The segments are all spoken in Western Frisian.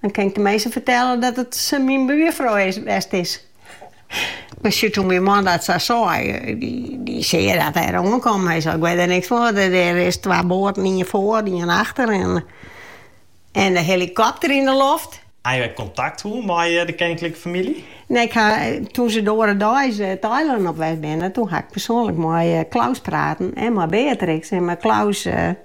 Dan kin ik de minsken fertelle dat it sa myn buerfrou west is. Mar ja, toen myn man dat sa sei. Dy sei dat er oankommen. Hy sei, ik wit der niks fan. Der is twa boaten, ien foar en ien achter en de helikopter yn de loft. Ha jo ek kontakt hân mei de keninklike famylje? Nee, ik ha, toen ze de oare deis it eilân op west binne, toen ha ik persoanlik mei Claus praten en mei Beatrix en mei Claus.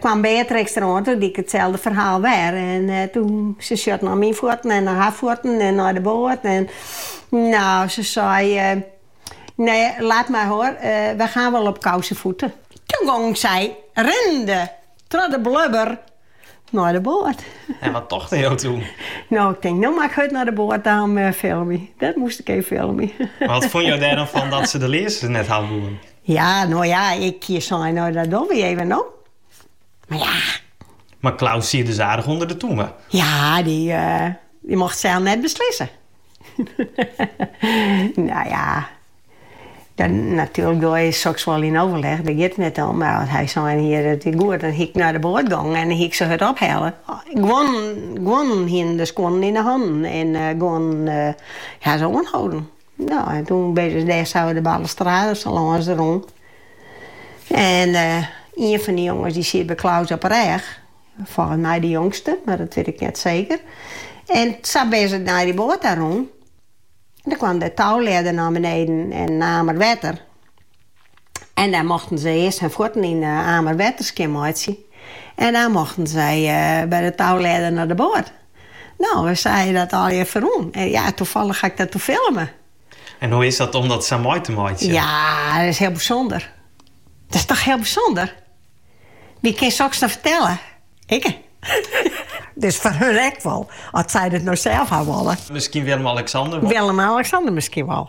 kwam Beatrix der oan, toen die ik itselde ferhaal wer. En toen, ze sjocht nei myn fuotten en nei har fuotten en nei de boat. En nou, ze sei, nee, laat maar hoor, we gaan wel op kousenvoeten. Toen gong zij rinnende troch de blubber nei de boat. En wat tochte jo toen? Nou, ik tink, no moat ik hurd nei de boat om te filmjen. Dat moast ik even filmje. Wat fûn jo der dan fan dat ze de learzens net hawwe woene? Ja, no ja, ik hie sein, nee dat dogge wy even no. Mar ja. Mar Claus siet dus aardich ûnder de tûme. Ja, dy, dy mocht sel net beslisse. Nou ja, natuerlik doe je soks wol yn overleg, dêr giet it net om. Mar want as hy sein hie dat is goed, dan hie ik nei de boat gongen en dan hie ik se hurd ophelle. Guon, guon hiene de skuonnen yn de hannen en guon ha se oanholden. No, en toen binne ze dêr zo de balustrade sa lâns rûn. En ien fan de jonges die siet by Claus op 'e rêch. Folgens mij de jongste, mar dat wyt ik net zeker. En sa binne ze nei de boat ta rûn. En dan kwam de touwledder nei beneden en in amer wetter. En dan mochten ze eerst hun fuotten yn de amer wetter skjinmeitsje. En dan mochten zij by de touwledder nei de boat. No, wy seagen dat al fierút. En ja, toefallich ha ik dat toen filme. En hoe is dat om dat sa mei te meitsjen? Ja, dat is hiel bysûnder. Dat is toch hiel bysûnder? Wie kin soks no fertelle? Ikke. Dus foar hun ek wol, as sy dat no sels ha wolle. Miskien Willem-Alexander wol. Willem-Alexander miskien wol.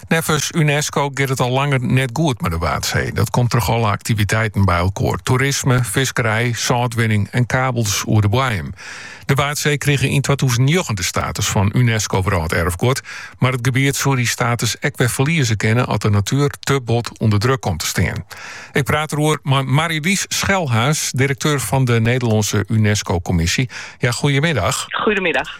Neffens UNESCO giet it al langer net goed mei de Waadsee. Dat komt troch alle aktiviteiten by elkoar. Toerisme, fiskerij, sâltwinning en kabels oer de boaiem. De Waadsee krige yn twatûzen njoggen de status fan UNESCO Wrâlderfguod, mar it gebiet soe dy status ek wer ferlieze kinne as de natuer te bot ûnder druk komt te stean. Ik praat eroer mei Marielies Schelhaas, direkteur fan de Nederlânske UNESCO-kommisje. Ja, goeiemiddag. Goeiemiddag.